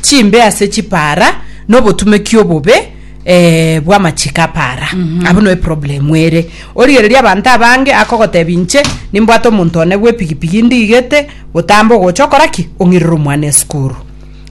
chimbe ase chipaara, na obotumeki obobe eh, bw'amachiko aparaa. Abwo no eproblemu ere. Origereria abanto abange akogotebi inche nimbwate omonto one bw'epigipigi ndigete gotamba ogocha okora ki? Ong'irere omwana esukuru.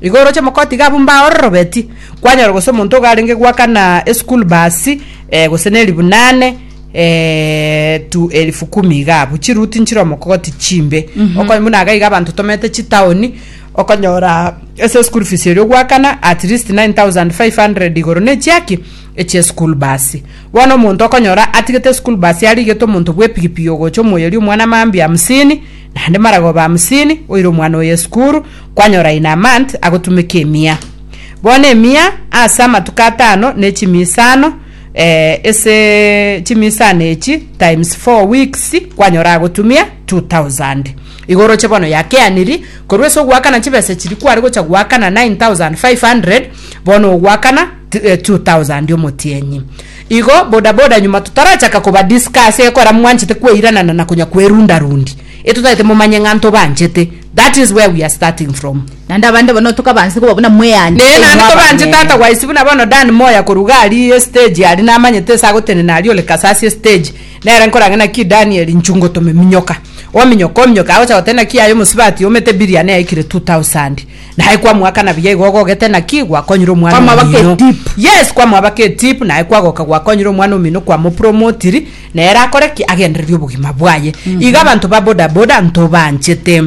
Igo oroche mokoti iga abwo mbaororobeti, kwanyora gose omonto iga arenge gwakana esukuru bus eh, gose na elifu nane eh, to elifu kumi iga abwo. Chiruti nchire omokogoti chimbe. Okony buna iga iga abanto tomerete chitaoni, Okonyora ase school fees eria ogoakana at least 9500 igoro ne chiaki echie school bus. Bono omonto okonyora atigete school bus arigete omonto bw'epigipigi ogocha omoyeria omwana mambia hamsini naende maragoba hamsini oire omwana oye esukuru kwanyora in a month agotumeka emia. Bono emia ase amatuko atano ne chimia isano eh ase chimia isano echi times four weeks kwanyora agotumia 2000. Igo oroche bono yakeaniri, korwa ase ogoakana chibesa chiria kware gocha goakana 9500, bono ogoakana 2000 omotienyi. Igo boda boda nyuma totarachaka koba discuss ekora mwanchete kweiranana na konya kwerunda rundi. Etotagete momanye ng'a ntobanchete. That is where we are starting from. Naende abande bono tokabaanchete koba buna mweani. Naye naende tobanchete ata gwaisi buna bono Dan Moya koruga aria estage aria namanyete ase agotenena aria ore kasasi estage. Nere nkorange naki Daniel nchungo tomeminyoka. Ominyoke, ominyoke, agocha goteba naki aye omosibati omete biriani yaikire two thousand. Naye kwamoakana buya igo ogogete naki gwakonyire omwana Kwamwabaka omino. etip. Yes, kwamwabaka etip naye kwagoka gwakonyire omwana omino kwamopromotiri nere akore ki agendererie obogima bwaye. Iga abanto ba boda boda ntobanchete.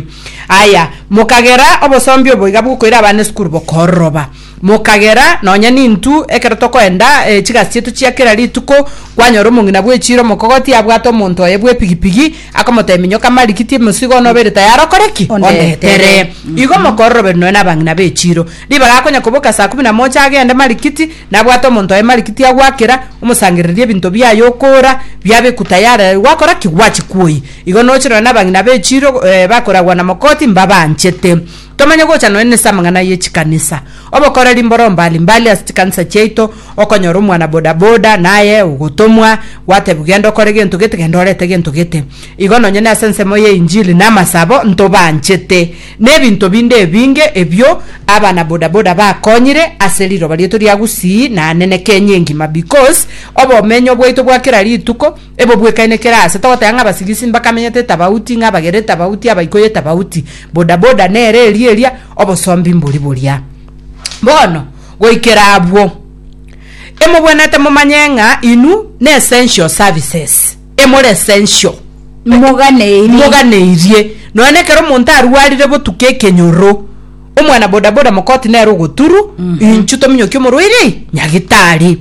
Aya, mokagera obosombi obo iga bwokoira abana esukuru bokororoba. Mokagera nonya nintwe, ekero tokoenda chigasi chiaito chia kera rituko, kwanyora omong'ina bw'echiira omokogoti abwate omonto oye bw'epigipigi, akomotebia, Minyoka marikiti emesigo one obeire tayari okore ki? Ondetere. Igo mokororoberia nonya nabang'ina b'echiiro. Ribaga akonya koboka saa kumi na mocha agende marikiti, nabwate omonto oye marikiti agwakera, omosangererie ebinto biaye okoora, biabekwa tayari aye gwakora ki? Gwachia kwoyia. Igo noche nonya nabang'ina b'echiiro bakoragwa na mokoti mbabanchete. Tomanye gocha nonya nase amang'ana ye chikanisa. Obokoreri mboro mbali mbali ase chikanisa chiaito, okonyora omwana boda boda naye ogotomwa, gwatebiwa genda okore gento gete genda orete gento gete. Igo nonya nase ensemo ye injili na amasabo ntobanchete. Nebinto binde ebinge ebio abana boda boda bakonyire ase riroba riaito ria gusii na Anene Kenya engima because obomenyo bwaito bwa kera rituko Ebo bwekaine kera aase togoteba ng'a abasirisi mbakamenyete tabauti, ng'a abagere tabauti, abaikoye tabauti. Boda boda nere eria eria, obosombi mbori boria. Bono, goikera abwo, emobwenerete momanye ng'a inwe ne essential services, emore essential. Moganeirie. Moganeirie. Nonya nekero omonto arwarire botuko ekenyoro, omwana bodaboda mokoti nere ogoturu inchu tominyokie omorwaire ii nyagitari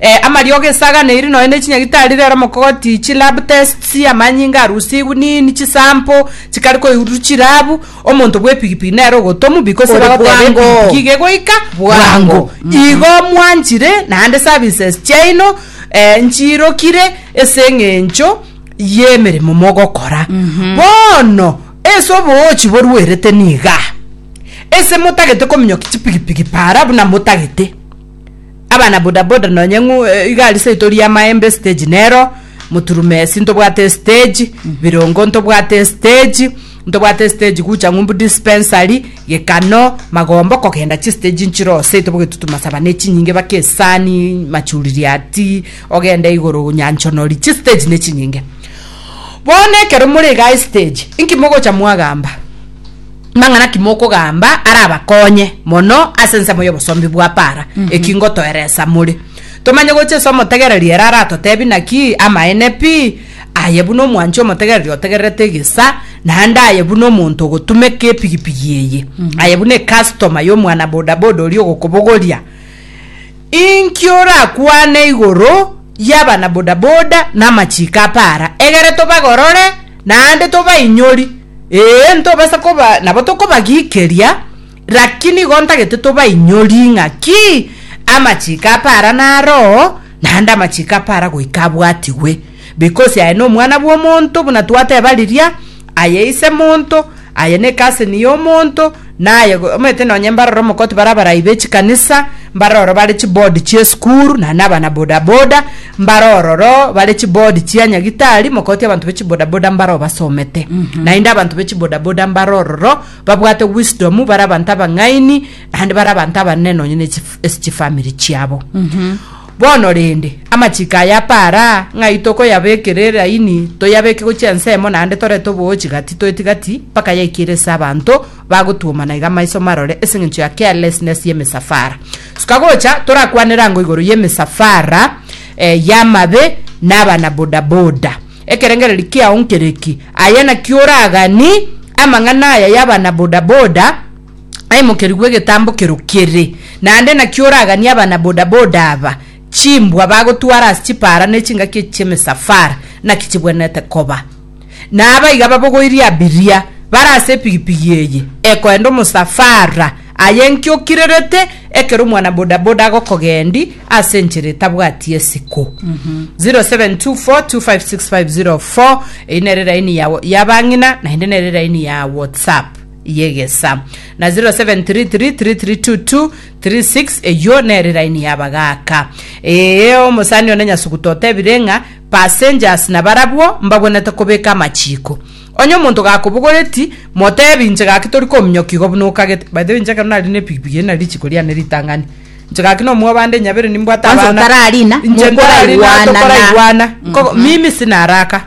eh, amariogo esaganeri nonya ne chinyagitari rero mokoti chi lab tests amanyinga arusigwe nini chisample chikare koirurwa chirabu omonto bwa epigipigi nere ogotomu because Ore bagoteba bwango. epigipigi iga egoika bwango igo mwanchire naende services chiaino eh, nchirokire ase eng'encho y'emeremo mogokora bono Ase oboochi boruerete niga ase motagete kominyokia chipigipigi para buna motagete abana bodaboda nonye ng'u igari seito ria maembe stage nero moturumesi ntobwate stage birongo ntobwate stage ntobwate stage gucha ng'umbu dispensary gekano magombo kogenda chistage nchiroo seito bogetutuma saba ne chinyinge baka esani machuririati ogende igoro nyanchonori chistage ne chinyinge. Bono ekero more iga ase stage, inki mogocha mwagamba? Mang'ana ki mokogamba arabakonye mono ase ensemo y'obosombi bwa para? Eki ngotoeresa more. Tomanye gocha ase omotegereri ere aratotebi naki amaene pi, aye buna omwanchi omotegereri otegererete egesa, naende aye buna omonto ogotumeka epigipigi eye, aye buna ecustomer y'omwana bodaboda oria ogokobogoria. Inki orakwane igoro y'abana bodaboda na amachiiko a para? Egere tobagorore naende tobainyori. Ee, ntobasa koba nabo tokobagikeria, lakini igo ntagete tobainyori ng'a ki amachiiko a para naroo, naende amachiiko a para goika abwatigwe. Because aye n'Omwana bw'omonto, buna twateba riria. Aye ise monto, aye nekaseni yomonto, naye omanyete nonye mbaroro omokoti bare abarai bechikanisa, mbare ororo bare chiboard chia esukuru, naende abana bodaboda, mbare ororo bare chiboard chia nyagitari, mokoti abanto bechibodaboda mbare obasomete. Naende abanto bechibodaboda mbare ororo babwate wisdom, bare abanto abang'aini, naende bare abanto abanene nonye ne chif- ase chifamiri chiabo. Bono rende, amachiko aya apara ng'ai tokoyabekera eraini, toyabeke gochia ensemo naende torete oboochi gati toeti gati, mpaka yaikire ase abanto bagotwoma na iga amaiso marore ase engencho ya carelessness y'emesafara. Suka gocha, torakwanere ango igoro y'emesafara eh, y'amabe na abana bodaboda. Ekerengererio kiao nkere ki? Aye naki oragani amang'ana aya y'abana bodaboda? aimokeru bw'egetambo kero kere. Naende naki oraganie abana bodaboda aba, chimbwa bagotwara ase chipaara ne chingaki echi chi'emesafara naki chibwenerete koba. Na aba iga babogoirie abiria bare ase epigipigi eye ekoenda omosafara aye enki okirerete ekero omwana bodaboda agokogendi ase enchera etabwati esiko. 0724256504 Eyi nere raini ya ya abang'ina naende nere raini ya WhatsApp. y'egesa. Na 0733332236 eyio nere laini y'abagaaka. Ee, omosani one Nyasuguta otebire ng'a passengers nabarabwo mbagwenerete kobeka amachiiko. Onye omonto gakobogoreti, motebi inche gaki tori kominyoka igo buna okagete. By the way, inche ekero nari na epikipiki eri nari richiiko riane ritang'ani. Inche gaki na omwabande nyabere nimbwate Kwanza abana. otararina, Inche ntararina, mokoraigwana na- tokoraigwana. Ko- mimi sina haraka.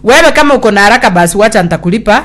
Wewe kama uko na haraka basi wacha nitakulipa.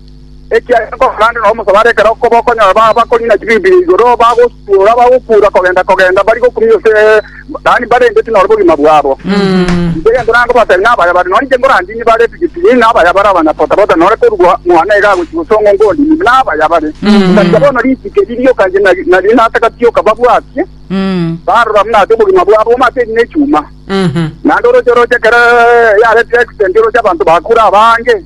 Ekiagera nkokorande nao mosabare ekero okoba okonyora baba bakong'ina chibibilia igoro, bagosuora, bagokuura kogenda-kogenda, bari gokumia ase, yaani barendeti noro bogima bwabo. Inche egento nangobatebi nabaya bare nonye inche nkorandinie bare tigitigi, nabaya bare abanyapota-pota, nore korwa mwane iga agochia gose ong'o ngondinie, nabaya bare. Otatiga bono ritike ririoka inche nari- naria natakatioka babwatie, barora buna ase obogima bwabo amo ase erina echuma. Naende oroche oroche ekero yaretirie accident oroche abanto bakure abange,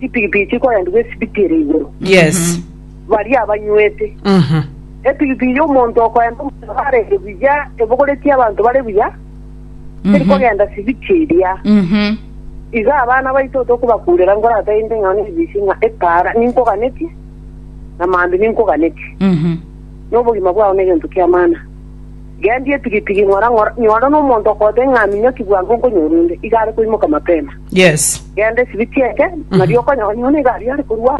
chipigipigi chikorendigwa esibiti ere igoro, Yes. baria abanywete. Mhm. Epigipigi y'omonto okorenta omonto arenge buya ebogoretie abanto bare buya, teri kogenda sibiti eria. Mhm. Iga abana baito tokobakurera nkorata inde ng'a nebisi ng'a epaara ninkoganetie, na maambia ninkoganetie. Mhm. Nobogima bwao negento ki'amana. Gendia etigitigi ng'ora ng'ora, nyora nomonto okogotebi ng'a minyoki bwango nkonyora onde, iga are koimoka mapema. Yes. Genda esibi chi'enke, nario okonyora nyona iga aria are korwa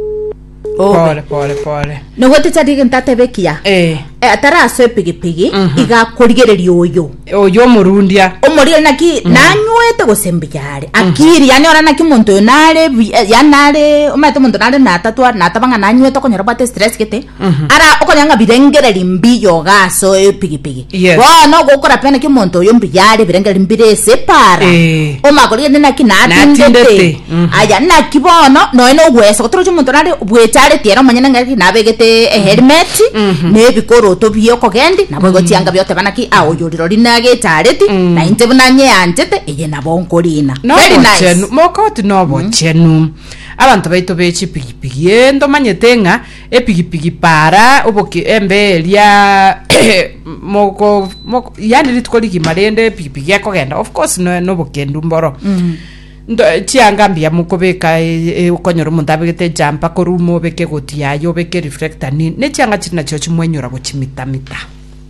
Obe. Pore pore pore. Nogwete tari egento atebe ekiya Eh. Eh, atarasoa epigipigi iga akorigereria oyo Oyo omorundia. omorire naki nanywete gose mbuya are akiri yani ora naki omonto oyo nare buya- eh, yani nare omanyete omonto nare natatwa nataba ng'a nanywete okonyora bwate stress gete ara okonya ng'a birengereri mbiyoga ase epigipigi Yes. bono gokora pena ki omonto oyo mbiyare birengereri mbire ase epara Eh. omagori gete naki Natindete. natindete Mhm. aya naki bono noe nogwesa gotoroche omonto nare bwechareti ere omonyene ng'aki nabegete eherimeti na ebikoroto bie okogendi nabo egochianga bioteba naki a oyo orirori nagechareti na inche buna nyeanchete eye nabo nkorina Very nice. nobochenu mokoti nobochenu abanto baito be chipigipigi ee ntomanyete ng'a epigipigi para oboke embe eria moko moko yani rituko rigima rende epigipigi ekogenda of course no- nobokendu mboro Nto, chianga mbuya mokobeka e- e- okonyora omonto abegete ejampa korwa ume obeke egoti yaye obeke reflector nini ne chianga chiri nachio chimwenyora gochimitamita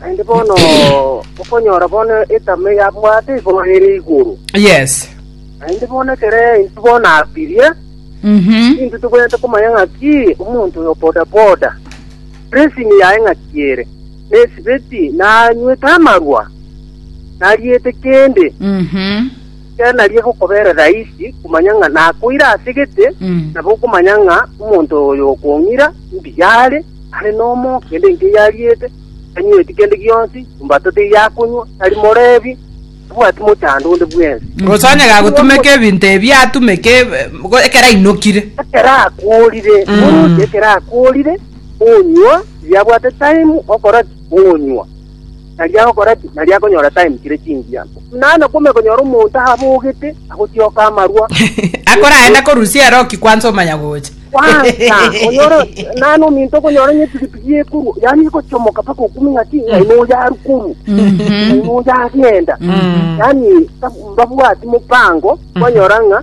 Naende bono okonyora bono etame yabwate igoro ere igoro. Yes. Naende bono ekero intwe bono abirie, Mhm. intwe tobwenerete komanya ng'aki omonto oyo bodaboda, dressing yaye ng'aki ere, nesibeti, nanywete amarwa, nariete kende. Mhm. Ekero nario egokobera rahisi komanya ng'a nakoire ase gete, nabo okomanya ng'a omonto oyo okong'ira mbuya are, are nomo, kende inki eyariete, tanyueti kende gionsi, embato teyakonywa, tari morebi, tabwati mochando onde bwensi. Gose onye gagotumeka ebinto ebi atumeke eh, go- ekero ainokire. ekero akorire oroche ekero akorire onywa yabwate time okora ki? onywa Nario agokora ki? Nario akonyora time kere chingiya. Naye nakomanya konyora omonto abogete agotioka amarwa. Akorae na korusia ero ki kwansa omanya gocha. Kwansa onyora naye na ominto okonyora onye pigipigi ekorwa yani egochomoka paka okumi ng'aki naye noyo arukorwa. Naye noyo agenda. Yani babwati mopango kwanyora ng'a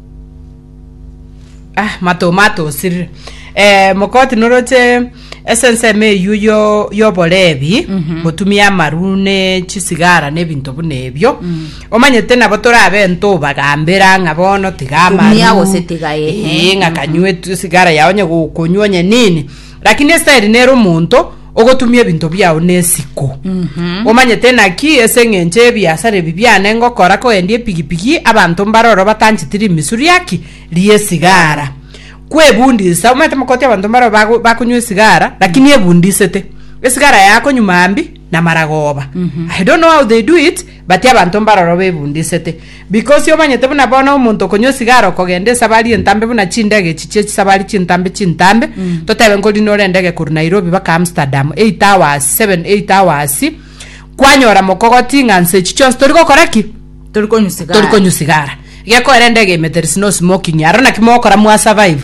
ah mato matosirire eh, mokoti noroche ase ensemo eyio yo- yoborebi gotumia amaru ne chisigara ne ebinto buna ebio omanyete nabo torabe ntobagambera ng'a bono tiga amaru Tumia gose tiga, ehe. Ee, ng'a kanywe tu- sigara yao onye gokonywa onye nini Lakini Esiteri nere omonto ogotumia ebinto biao nesiko. Omanyete naki ase engencho y'ebiasara ebi biane ngokora kogendia epigipigi abanto mbaroro batancheti rimisu riaki ri'esigara. Kwebundisa, omanyete mokoti abanto mbaroro bago- bakonywa esigara, lakini ebundisete. Esigara yako nyuma mbi, namara goba. I don't know how they do it, Batie abanto mbaroro bebundisete. Bikosi omanyete buna bono omonto okonywa esigara okogenda esabari entambe buna chindege echi chie chisabari chintambe chintambe, totebe nkori nore endege korwa Nairobi baka Amsterdam, eight hours, seven, eight hours, kwanyora mokogoti ng'a nse echi chionsi tori gokora ki? Tori konywa sigara. Tori konywa sigara. Gekoera endege emeterisi no smoking. Aro naki mogokora mwa survive.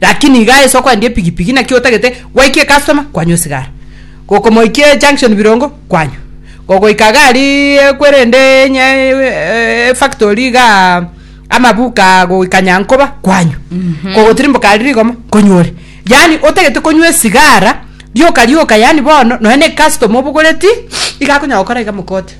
Lakini igaa ase okoendia epigipigi naki otagete gwaikia ecustoma kwanywa esigara, gokomoikia ejunction birongo kwanywa, gogoika gari ekwe rende enye efactory igaa amabuka goika nyankoba kwanywa, kogotirimboka aria rigoma konywa ore. Yaani otagete konywa esigara rioka rioka yaani bono nonya na ecustoma obogoreti iga akonyara gokora iga mokote.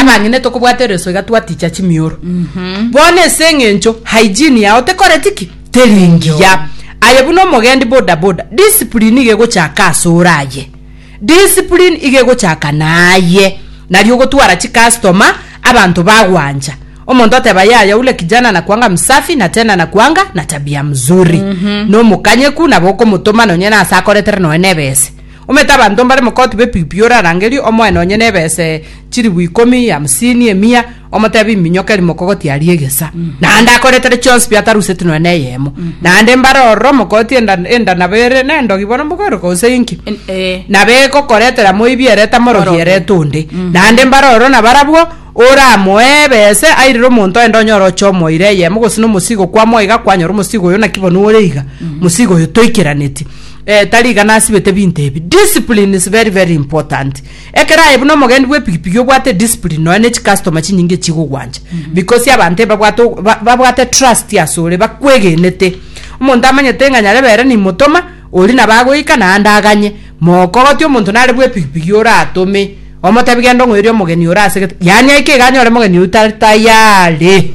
abang'ina etokobwata ereso iga twaticha chimioro mm-hmm. bono ase eng'encho hygiene yao tekoreti ki teringiya aye buna omogendi bodaboda discipline iga egochaka ase oraye discipline iga egochaka naye nari ogotwara chikastoma abanto bagwancha omonto ateba yaya ule kijana na kwanga msafi na tena na kwanga na tabia mzuri mm-hmm. nomokanyeku nabo okomotoma nonye nase akoretere noe nebese Omanyete abanto mbare mokoti b'epipio orarangerie omoe nonye nebese chilibu ikomi, hamsini, emia, omotebi iminyoka eri mokogoti aria egesa, naende akoretere chionsi biataruseti nonya neyemo. Naende mbare ororo mokoti enda enda nabo ere nendogi bono mbokoireka gose inki, En- eh. nabo egokoretera moibi ere tamorogi Morogi. erete onde. Naende mbare ororo nabarabwo oramoe ebese airire omonto aye ndonyore oche omoire eyemo gose nomosigo kwamwa iga kwanyora omosigo oyo naki bono ore iga, mosigo oyo toikeraneti. Eh tari iga nasibete binto ebi. Discipline is very very important. Ekero aye buna omogendi bwe pigipigi obwate discipline nonya ne chi customer chinyinge echigogwancha mm -hmm. because abante babwate babwate trust asore bakwegenete omonto amanyete ng'a nyarebe ere nimotoma ori na bagoika na ande aganye mokogoti omonto nare bwe pigipigi ora atome omotebi genda ong'oeri omogeni ora asegete yani aike iga anyore omogeni oyo tari tayari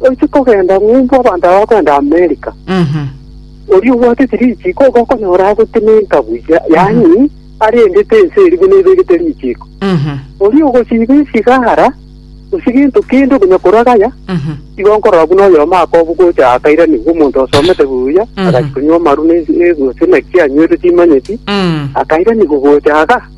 Oise kogenda ng'umbu abanto aba bakoenda Amerika. Oria obwatete richiko igo okonyora agotenenka buya, yaani arendete ense eria buna ebegete richiko. Oria ogosiba esigara, gose gento kende okonya korwa gaya, igo nkorora buna oyomo akobu gocha akairanigwa omonto osomete buya, agachia konywa amaru ne ense, gose naki anyweire timanyeti, akairanigwa gocha aga.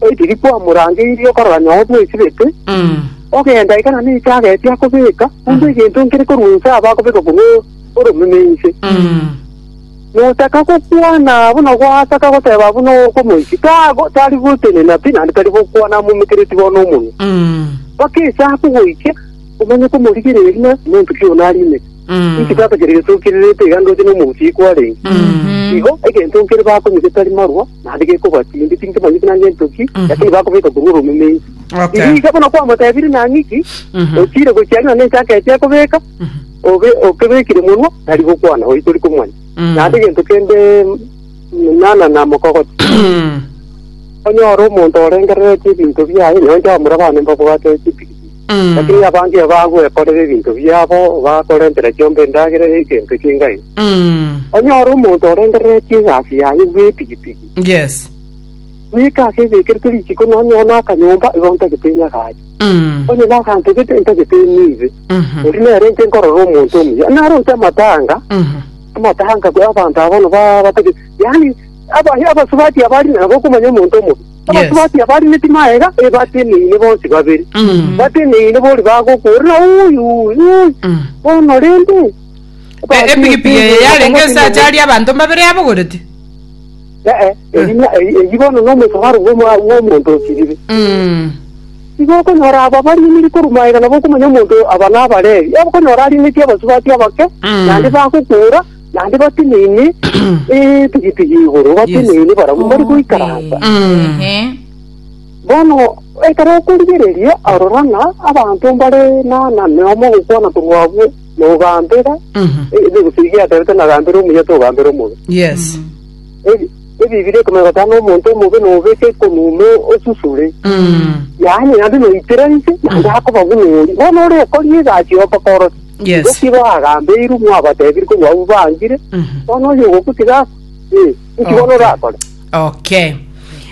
Oitiri kwamorangeirie okorora nyoo bwesibete, ogenda eka na necha ageti akobeka, buna egento nkere korwa inse aba akobeka korwa oromeme inse. Nochaka gokwana abwo na gwasaka goteba abwo na okomoiti, tago tari gotenena pi naende tari gokwana amometereti bono omonwa. Mpaka esaku goikia omanye komorigereria ng'a monto ki oyio arimete. Inki tata kere gesokererete iga ndoche nomogusi yi kwarenge? Igo egento nkere bakonye getari marwa. naende gekobua chimbe, tinkemanyeti naende nto ki, Mhm. lakini bakobeka korwa ore omeme inse. Okay. Erisa buna kwamotebirie nang'e ki, Mhm. ochire gochia ng'a nense aketia ekobeka, Mhm. obe okebekire monwa, nari gokwana, oyi tori komwanya. Mm. Naende egento kende mm, nana na mokogoti. Mm. Onyore omonto orengereretie ebinto biaye, nonye ore abana mbabwate chipikipiki. Lakini abange abagwekorera ebinto biabo bakore enchera chiomba endagera y'egento ki'engai. Onyore omonto orengereretie egasi yaye bw'epigipigi, Yes. goika ase ebekerete risiiko nonye one akanyomba igo ntagete nyagache. Onye nagantogete ntagete niibe. Erio nere inche nkorora omonto omuya. Naro inche amatanga, amatanga abanto aba bono ba- batagete. Yaani aba- abasubati aba ari nabo okomanya omonto omobe. Abatubati abarineti maega e bateneine bonsi babere, Mm. bateneine bori bagokurera ui ui ui Mm. bono rende E- ebatinyeti epigipigi eye igoro yarenge bakomotinyeti. esacha aria abanto mbabere yabogoreti Ee, erina- eri- eri bono nomosomaro bw'omo- bw'omonto osirire Mm. igo okonyora aba bariniri korwa maega nabo okomanya omonto aba nabalebi okonyora arineti abasubati abake Mm. naende bagokura Naende bateneine etigitigi igoro, Yes. bateneine barabwo mbare goikaransa. Mm. Ehe. Bono ekero okorigereria arora ng'a abanto mbare na na neomo gokwana korwa abwo na ogambera Mhm. e- ebe gose iga yaterete nagambera omuya togambera omobe Yes. Ebi- ebibiri ekomanya gotana omonto omobe nobeke konume osusure Mm. yaani naende noitera inse naende akoba buna ori bono ore okori egasi okokorosi Yes. Nki baagambeirwe mwabatebire korwa abwo baangire? Mhm. Bono oyo ogokutiga ase? Ee, nki bono Okay. orakore? okay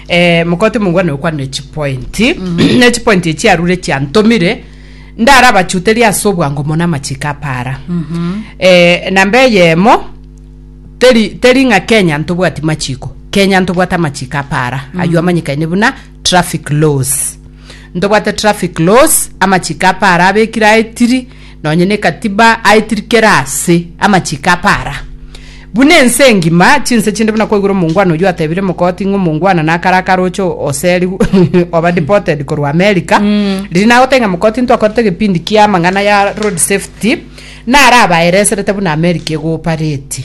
eh, mokoti mongwe nokwa ne chipoint ne chipoint echi arure chiantomire ndara bachuteria ase obwango mono amachiko apara eh, namba eyemo teri teri ng'a kenya ntobwati machiko kenya ntobwate amachiko apara aywo amanyikaine buna traffic laws Ntobwate traffic laws, amachiko apara abekire aetiri, nonye ne katiba aetiri kera ase amachiko apara. Buna ense engima, chinse chinde buna kwaigure omongwana oyio atebire mokoti ng'a omongwana nakare akaroche oseri oba deported korwa America. Riria nagotebia ng'a mokoti ntwakorete egepindi kia amang'ana ya road safety, narabaereserete buna America egopareti.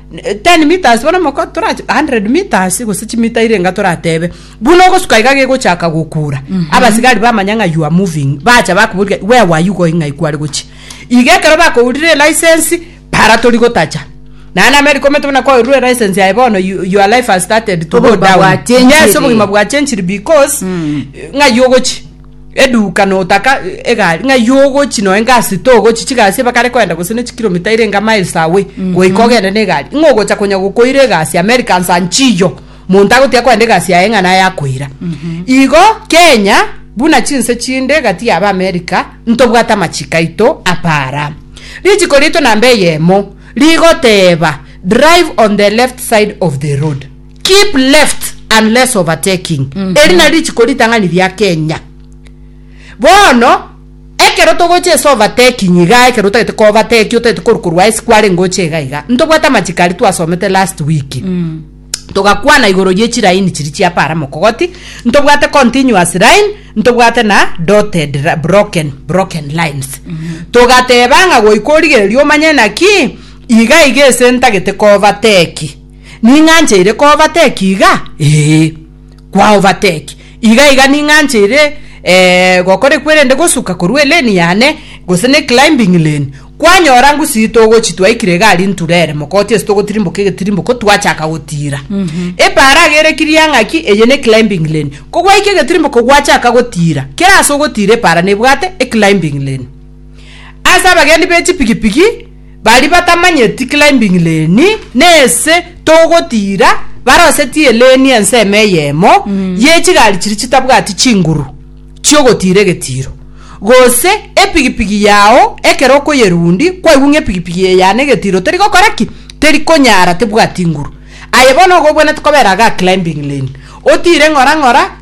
10 meters bono moko torache 100 meters gose chimita ire enga toratebe buna ogosuka iga gegochaka gokura abasigari bamanya ng'a you are moving bacha bakoboriga where were you going ng'ai kware gochia iga ekero bakourire license para tori gotacha naye name rikomete buna koirure license yaye bono you- your life has started to go Obogima down bwachenchire. yes obogima bwachenchire because ng'ai ogochia eduka notaka egari ng'a iywo ogochi noe ngasito ogochi chigasi ebakare koenda gose ne chikilomita erenge miles away goika ogende na egari ng'a ogocha konya gokoira egasi Americans and chiyo monto agotiga koenda egasi yaye ng'a naye akoira igo Kenya buna chinse chinde gati yaba America ntobwate amachiko aito apara richiko riaito namba eyemo rigoteba drive on the left side of the road Keep left and less overtaking mm -hmm. eri nari richiko ritang'ani ria kenya bono ekero togocha ase overtaking iga ekero otagete ko overtake otagete koru korwa ase kware ngoche iga iga ntobwate amachiko ari twasomete last week mm. togakwana igoro ye chiraini chiri chia para mokogoti ntobwate continuous line ntobwate na dotted broken broken lines mm -hmm. togateba ng'a goika origereria omanye naki iga iga ase ntagete ko overtake Ning'anche ere koovateki iga? Ee, kwaovateki. Iga iga ning'anche ere eh, gokora ekwerende gosuka korwa eleni yane gose ne climbing lane. Kwanyora ngusi ito ogochi twaikire iga aria nture ere mokoti ase togotirimboka egetirimboko twachaka gotira. Epaara agerekirie ang'a ng'aki eye ne climbing lane. Kogwaika egetirimboko gwachaka gotira, kera ase ogotira epaara nebwate e climbing lane. Ase abagendi be chipigipigi, Baria batamanyeti climbing lane nese togotira barosetie lane ensemo eyemo ye chigari chiria chitabwati chinguru chi'ogotira egetiro. Gose epigipigi yao ekero okoyerundi kwaigwa ng'a epigipigi eye yane egetiro teri gokora ki? Teri konyara tebwati inguru. Aye bono igo obwenerete kobera iga climbing lane. Otire ng'ora ng'ora.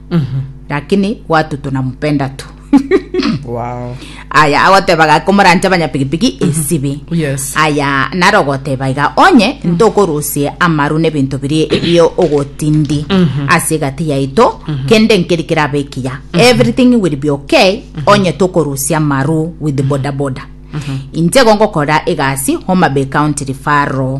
lakini watu tunampenda tu Wow. aya agotebaga komorancha abanyapigipigi esibi Yes. aya naro ogoteba iga onye ntokorusie amaru n'ebinto birie ebio ogotindi ase egati yaito kende nkeri kerabe ekiya everything will be okay onye tokorusia amaru with bodaboda inche igo ngokora egasi homabay county referral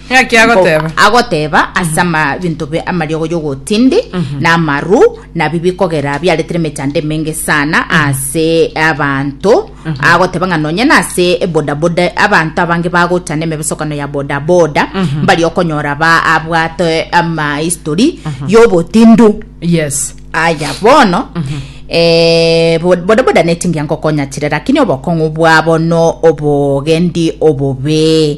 Naki agoteba. Agoteba ase amabinto be amariogo y'ogotindi na amaru nabi bikogera biaretire emechando emenge sana ase abanto agoteba ng'a nonye nase bodaboda abanto abange bagocha nemebesokano ya bodaboda mbari okonyora ba abwate amahistory y'obotindu yes aya bono eh, bo- bodaboda netingia ngokonya chire lakini obokong'u bwabo no obogendi obobe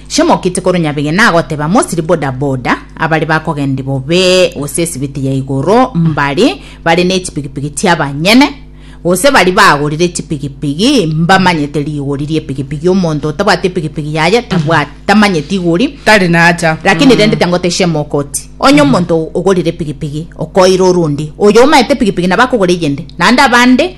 Chiamokite korwa Nyabigena agoteba Mosiri boda boda abare bakogendi bobe gose esibiti ya igoro mbare bare ne chipigipigi chiabanyene gose bari bagorire chipigipigi mbamanyete rigori riepigipigi omonto otabwate epigipigi yaye tabwate tamanyeti igori Tari nacha. lakini rende tengote chiamokoti onye omonto ogorire epigipigi okoira orundi oyo omaete epigipigi nabo akogora eyende naende abande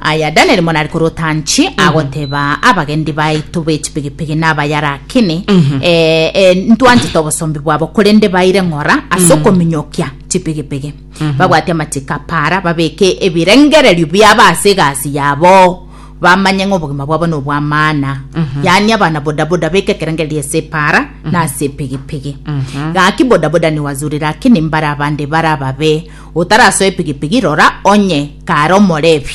Aya Danieli mono ari korota nchi agoteba abagendi baito b'echipigipigi n'abayarakini eh, eh, ntwanchete obosombi bwabo korende baire ng'ora ase okominyokia chipigipigi babwate amachiko apara babeke ebirengererio biabo ase egasi yabo bamanye ng'a obogima bwabo nobwamana yaani abana bodaboda beke ekerengererio ase epara na ase epigipigi gaki bodaboda niwazurire akini mbare abande bare ababe Otarasoe pigipigi, rora, onye kare omorebi,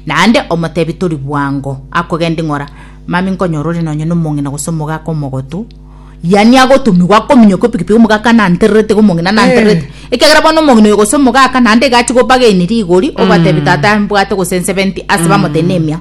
naende omotebi tori bwango akogenda ing'ora, Mami nkonyora ore nonye nomong'ina gose omogaka omogotu, yani agotumigwa akominyoka epigipigi omogaka nantererete iga omong'ina nantererete, ekiagera bono omong'ina oyo gose omogaka naende iga achia gobagaini rigori, obatebi tata mbwate gose nsebenti ase bamoteine emiao.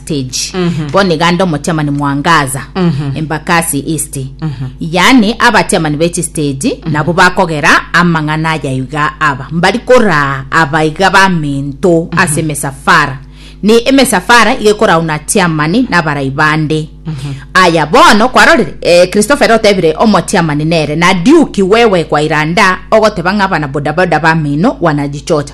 stage bono iga ande omotiamani mwangaza embakasi east yaani abatiamani b'echistage nabo bakogera amang'ana aya iga aba mbari koraa aba iga bamento ase emesafara ne emesafara iga ekorauna tiamani nabarai bande aya bono kwarorire eh, christopher otebire omotiamani nere na duki wewe kwairanda ogoteba ng'a abana bodaboda bamino wanajichocha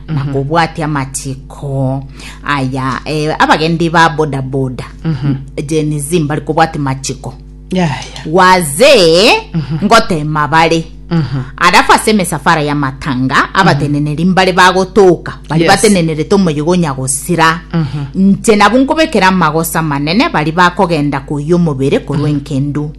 makobwatia amachiko aya eh, abagendi ba bodaboda Gen Z mbari kobwati machiko yaya wazee ngotema bare arafu ase emisafara ya matanga abateneneri mbare bagotoka bari Yes. batenenerete omoyigo nyagosira nche nabo nkobekera amagosa manene bari bakogenda koyia omobere korwa enkendu